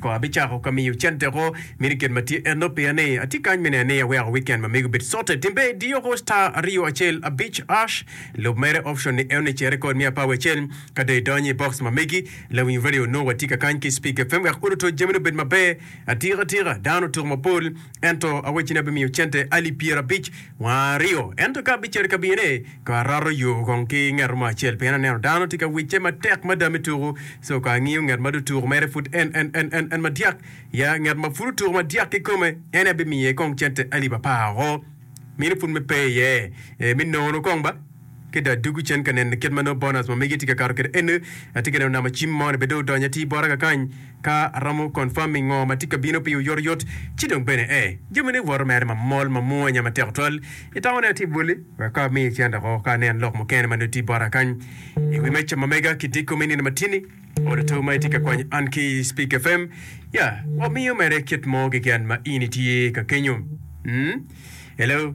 Kong abicako ka miyo cente oko, mini kit ma tye enno piya ni atye kany me neno ni aweko weekend ma mego obed cote. Timbe diyo oko star aryo acel abic ash lub mere option ni eone cere code me apawi acel ka dong idonyo i box ma megi lawiny radio nongo watye ka kany ki speak fm wek odo to jamine obed maber atika tika dano otuko mapol Ento awacci ni abimiyo cente alip pyerabic wa aryo. Ento ka abicer i kabinane, ka arato yo kong ki nget mo acel, pien aneno dano tye ka wicce matek mada me tuku. So ka angiyo nget ma dong tuku mere pud en, en, en, en, en madyak, ya, nget ma pud otuku madyak kikome, en abimiye kong cente alip apar woko, mini pud me pe iye, ee, me nono kong ba. ki dong adwogo cen ka neno kit ma nongo bonus ma mege tye ka kato kwede ene, atye ka neno namo cim mo ni bene dong odonyo atir bota kakany ka aromo confirming ngo ma tye ka bino pi oyot oyot ci dong bene ee jami ne woto mere ma mol ma mwonya ma tek twal i tama ne atye bwole wek ka amiyo cen dok ka aneno lok mukene ma nongo tye bota kany i wi meca ma mega ki diko me nino ma tyeni olo to ma itye ka kwanyo an ki i speak fm ya wa miyo mere kit mo keken ma in itye ka kenyo mm hello.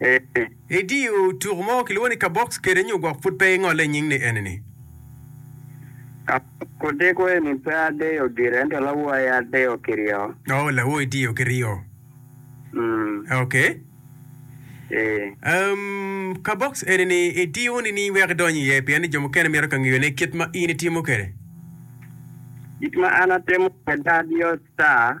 Ee. Idiyo tuku mo kilwongo ni kabox kede nyo gwok pud pe ingole nying ni enini? Kabox odeko eni pe adeyo gire ento lawo aye adeyo ki ryo. Oh lawo idiyo ki ryo. Mm. Okay. Ee. Um, kabox enini idiyo nining wek idony iye pien ni jo mukene mito ka ngiyo ne kit ma in itimo kede? Kit ma an atimo kede adiyo star.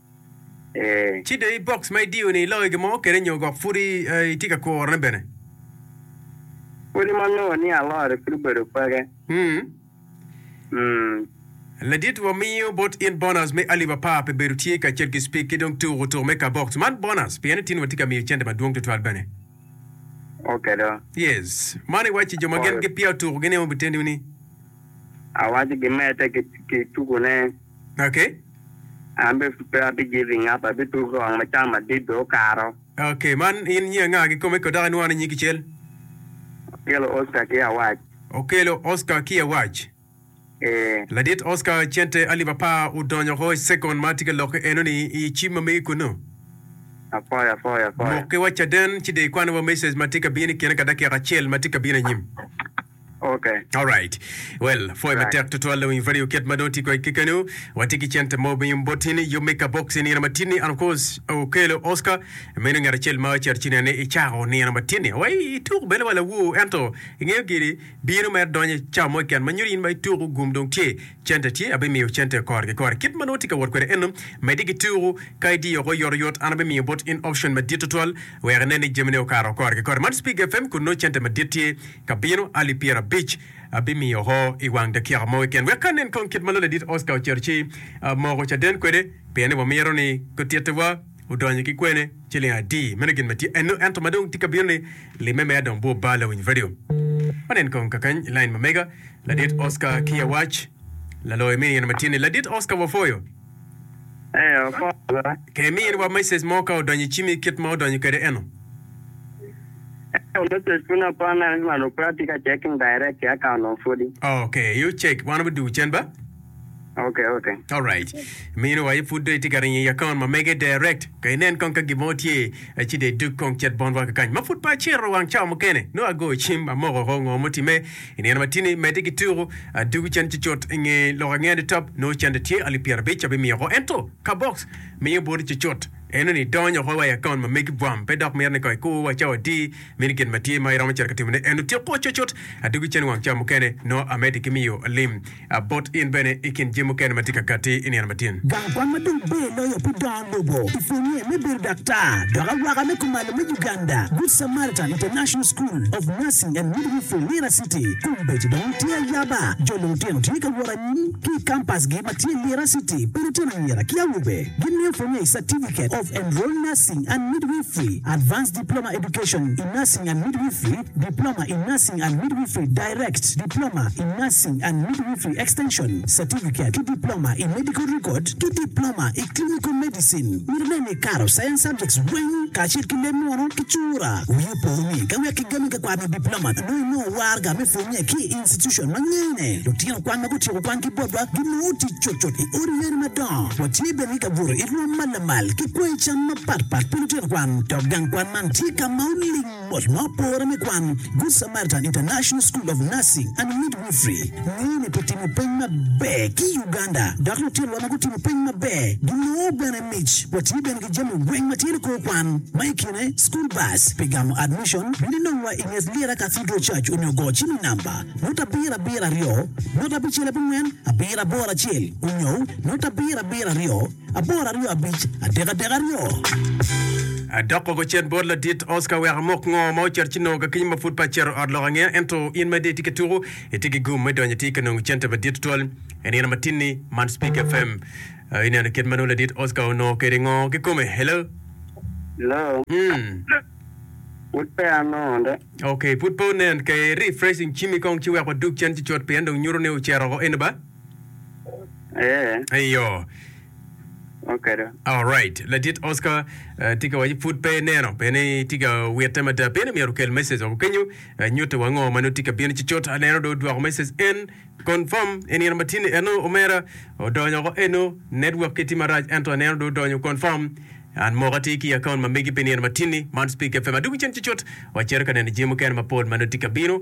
Ee. Ci dong i box ma idiyo-ni iloyo gin mo kwede nyo gwok pud itye ka kurone bene? Kodi ma angeyo ni alore pud obedo peke. Hmm. Ladit, wamiyo bot in bonus me alip apar pi bedo tye ka cet ki Spik ki dong tuko tuko me ka box. Man bonus pien itino watye ka miyo cente madwong tutwal bene. Oke do. Yes. Man iwacci jo ma gin gipiya otuko gin aye wun biteni-wu ni. Awaco gimedde ki tukone. Okay. An be pe abi giving up abi tuko wang ma cam madit be okato. Okay man in nyi anga gi kome ko dok inwano nyi kicel? Okelo Oscar ki Awac. Okelo Oscar ki Awac. Ee. Ladit Oscar cente alip apar odonyo oko i second ma atye ka lokke eno ni i cim ma megi kunu. Apoyo apoyo apoyo. Mokke wa caden ci dong ikwan wa message ma tye ka bino i kine ka dakika acel ma tye ka bino anyim. Okay. Alright. Well, pwoya Right. matek tutwal dong in radio kit ma dong tye kodi kekeni. Watye ki cente mo ma in boti ni you make a box i nino matini and of course okelo Oscar meno ngat acel ma ocito ci nene icako nino matini. Wa ituk bene wa lawu ento ingeyo giri bino mere donyo cawa mo keken ma nyuto in ma ituku gum dong tye cente tye abimiyo cente kore ki kore. Kit ma nongo tye ka wot kwede eno medi ki tuku ka idiyo oko yot yot an abimiyo bot in option madit tutwal wek inen ni jamine okato kore ki kore. Man Speak FM kun nongo cente madit tye Ka bino ali pyerabic, abimiyo oko i wang dakika mo keken wek anen kong kit ma Loyo Ladit Oscar ocito ci amoko caden kwede, pien ni wamito ni gutittiwa odonyo ki kwene ciling adi. Meno gin ma tye enno. Ento ma dong tye ka bino-ni, limme me adong bwor bal awinyo redio. Wanen kong kakany i lain ma mega. Ladit Oscar, Kiya Wac, Laloyo mini in ma tin-ni. Ladit Oscar, Wapwoyo. Ee, okobo ba. Ka imini wa message mo ka odonyo i cimi kit ma odonyo kwede eno. Ento message pud na pon na malo pe atye ka checking direct ki account of pudi. Ok, you check wan wi dugu cen ba. Ok, ok. Alright. Mini wa aye pud dong itye ka ringo i account ma mege direct. Ka inen kong ka gin mo tye, ci dong idog kong cet bot wa kakany. Ma pud pe aciro wang cawa mukene, nongo agoyo cim, amoko oko ngo mutime. I nino ma tye-ni, medde ki tuko adungu cen ci cut i nge lok angeya nitop. Nongo cente tye alip pyerabic abimiyo oko. Ento, ka box miyo boti ci cut, eno ni idonyo oko wa i akaunt ma megi bwam. Pe dok miti ni kong ikur wa cawa adi. Mini gin ma tye ma iromo cito ka timone eno, tiku cocot adungu cen wang ca mukene, nongo amedde ki miyo lim. A Bot in bene i kin jami mukene ma tye ka gatti i nino matyen. Gang kwan ma dong ber loyo pi dongo lobo i pwonye me bedo daktar dok awaka me kumalo me Uganda, Good Samaritan International School of Nursing and Midwifery, Lira City. Kombeddi dong tye ayaba, jo lulutino tye ka wot anyim ki i kampasgi ma tye i Lira City pi lutino anyira ki awobe. Gimiyo pwonye i Certificate of Enrolled Nursing and Midwifery, Advanced Diploma Education in Nursing and Midwifery, Diploma in Nursing and Midwifery Direct, Diploma in Nursing and Midwifery Extension, Certificate ki Diploma i Medical Record ki Diploma i Clinical Medicine. Myero nen ni ikato Science Subjects weng kacel ki leb munu ki cura. Wii opo ni ka wek kigami ka kwano Diploma nongo inongo warga me pwonye ki i institution ma ngene lutino kwan ma gutyeko kwan ki botwa ginongo tic cutcut i odi yene madongo. Watye bene ki kabuto i rwom ma lamal ki kwango cam mapatpat pi lutino kwan dok gang kwan man tye ka ma oling Ot ma opore me kwan, Good Samaritan International School of Nursing and Midwifery, ngeyo ni pi timo peny maber ki i Uganda dok lutinowa ma gutimo peny maber ginongo bene mic. Watye bene ki jami weng ma tye ni kor kwan, ma i kine school bus pi gamo admission, bino inongwa i nget Lira Cathedral Church onyo go cimi namba, not abiro abiro aryo, not abicel abongwen abiro aboro acel, onyo not abiro abiro aryo, Apor aryo abic adek adek aryo. Adok kogo cen bot ladit Oscar wek amok ngo ma ocito ci nongo kakinyi ma pud pe acito ot lok angeya ento in ma idong itye ka tuku itye ki gum me donyo itye ka nongo cente madit tutwal inino matin ni man speak fm uh, ineno kit ma nongo ladit Oscar onongo kede ngo ki kome hello Hello, mm pud pe anongo de. okay pud pe onen ke refreshing cimi kong ci wek wadug cen ci cut pien dong nyuto ni ocito oko eno ba Ee. Eyo. Okedo. Alright. Ladit Oscar, eh, tye ka waco pud pe ineno, pe ni itye ka witte mada. Pieni myero okel message woko kenyo, eh, nyutte wa ngo ma nongo tye ka bino cucut. Aneno dong odwoko message en, confirm, i nino ma tye ni eno, omera, odonyo woko eno, network ki tye marac ento aneno dong odonyo, confirm. An moka tye ki i account ma megi pi nino ma tye ni, man Speak FM. Adwogo cen cucut, wacito ka neno jami mukene mapol ma nongo tye ka bino.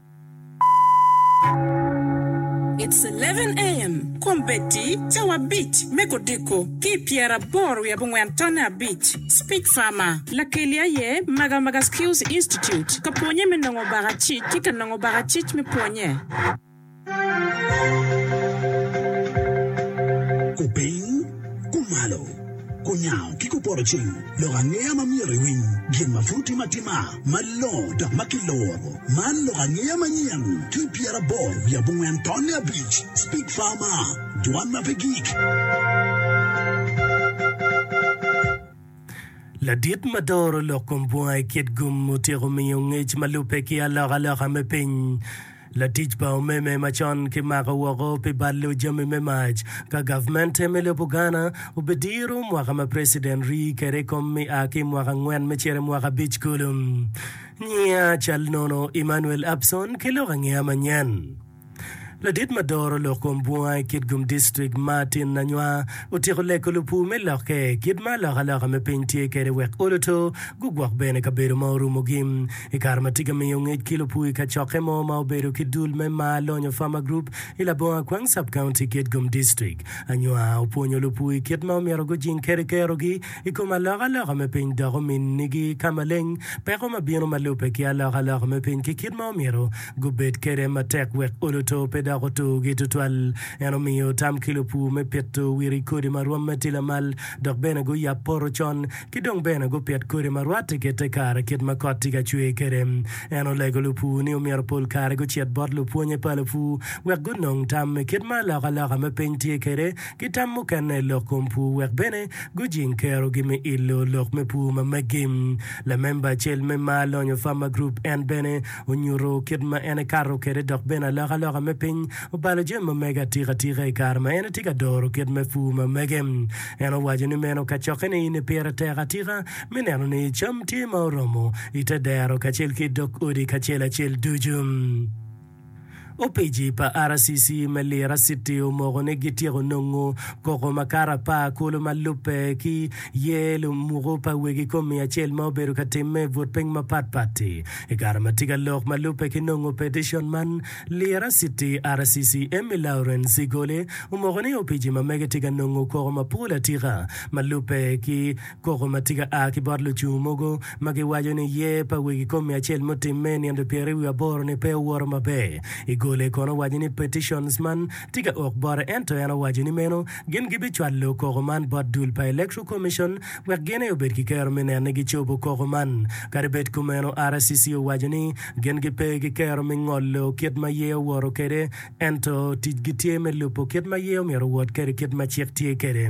It's eleven AM, Kombeddi cawa abic me kodiko, ki i pyeraboro wiye abongwen tonne abic, Speech Farmer, Lakeli aye Maga Maga Skills Institute ka pwonye me nongo baka cic ki ka nongo baka cic me pwonye. Kupiny, kumalo, kunyango ki kupoto cing lok angeya ma myero iwiny gin ma pud timo atima. Malongo dok ma kiloro. Man lok angeya manyen ki pyeraboro wiye abongwen tonne abic, Speak Farmer, Dwan ma pe gik. Ladit ma doro lok kom bunga i kit gum otyeko miyo ngec ma lubbe ki alokaloka me piny. Latic pa omeme macon kimako woko pi balo jami me mac ka gavmente me lobo Ghana obidiro mwaka ma president rii kede ikom me a ki imwaka angwen me cito imwaka abic kulu. Nyinga cal nono Emmanuel Abson ki lok angeya manyen. Ladit ma doro lok kom bunga i Kitgum District Martin Nanywa otyeko lego lupur me lokke kit ma alokaloka me piny tye kede wek oluto gugwok bene kabedo ma orumogi. I kare ma tika miyo ngec ki lupui kacokke mo ma obedo ki dul me mar lonyo Farmer Group i labongo Akwang Sub-County ki Edgum District, Anywa opwonyo lupui kit ma omyero gujing kede kerogi i kom alokaloka me piny dok ominigi ka maleng peko ma bino ma lubbe ki alokaloka me piny ki kit ma omyero gubed kede matek wek olo to pe dok otugi tutwal. En omiyo tam ki lupu me pito wiri kodi ma rwomme tye lamal dok bene guyab poto con Ki dong bene gupit kodi ma rwatte ki te kare kit ma kot tye ka cwer kwede. En olego lupur ni omyero pol kare gucit bot lupwonnye pa lupur wek gunong tam i kit ma alokaloka me piny tye kwede ki tam mukene i lok kom pur wek bene gujing kerogi me ilo lok me pur ma megi. Lamemba acel me ma alonyo Farmer Group en bene onyuto kit ma en ekato kwede dok bene alokaloka me piny obalo jami ma mege atikatika i kare ma en tye ka doro kit me pur ma mege. En owaco ni meno kacokke ni in pire tek atika me neno ni cam tye ma oromo i te dero kacel ki i dog odi kacel acel ducu. Opeci pa RCC me Lira City omoko ni gityeko nongo koko makato apar kulu ma lubbe ki ye lumuku pa wegi kom miya acel ma obedo ka timme i but piny mapat pat-ti. I kare ma tye ka lok ma lubbe ki nongo peticion man, Lira City, RCC, Emmy Lawrence i goli omoko ni Opici ma mege tye ka nongo koko mapol atika ma lubbe ki koko ma tye ka a ki bot lucung mogo ma giwaco ni yer pa wegi komi acel mutimme i nino pyeri wiye aboro ni pe owoto maber. I goli kono owaco ni petitions man tye ka ok bote ento en owaco ni meno gin gibicwalo koko man bot dul pa Electoral Commission wek gin aye obed ki kero me neno ni gicobo koko man. Kadi bed kumeno, RCC owaco ni Gin gipe ki kero me ngolo kit ma ye owoto kwede, ento ticgi tye me lubo kit ma ye omyero owot kwede kit ma cik tye kwede.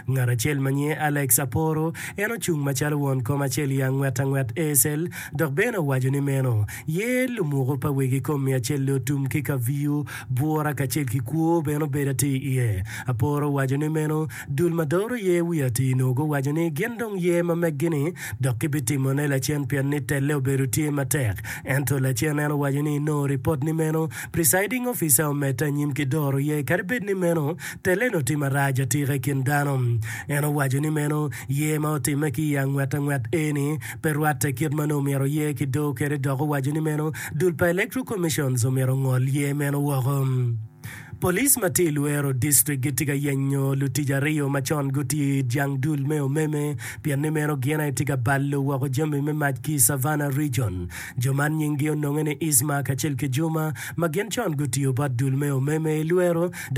Ngat acel ma nyinge Alex aporo, en ocung macalo won kom acel i angwet angwet ASL, dok bene owaco ni meno ye lumuko pa wegi kom miyo acel otum ki kaviyo, bwura kacel ki kwo bene obedo atir iye. Aporo owaco ni meno Dul ma doro ye wi atir nwogo owaco ni gin dong ye ma meggi ni dok gibitimo ne lacen pien ni telle obedo tye matek. Ento lacen en owaco ni nongo ripot ni meno presiding officer omedde anyim ki doro ye kadi bed ni meno telle ni otim arac atika i kin dano. En owaco ni meno ye ma otimme ki i angwet angwet eni pe rwatte kit ma nongo omyero ye ki do kede dok owaco ni meno dul pa electoral commissions omyero ongol ye meno woko. Police ma tye i Luero District gitye ka yenyo lutic aryo ma con gutye i it jang dul me omeme pien ni meno gin aye tye ka balo woko jami me mac ki i Savannah Region. Jo man nyinggi ononge ni Isma kacel ki Juma ma gin con gutiyo bot dul me omeme i Luero dok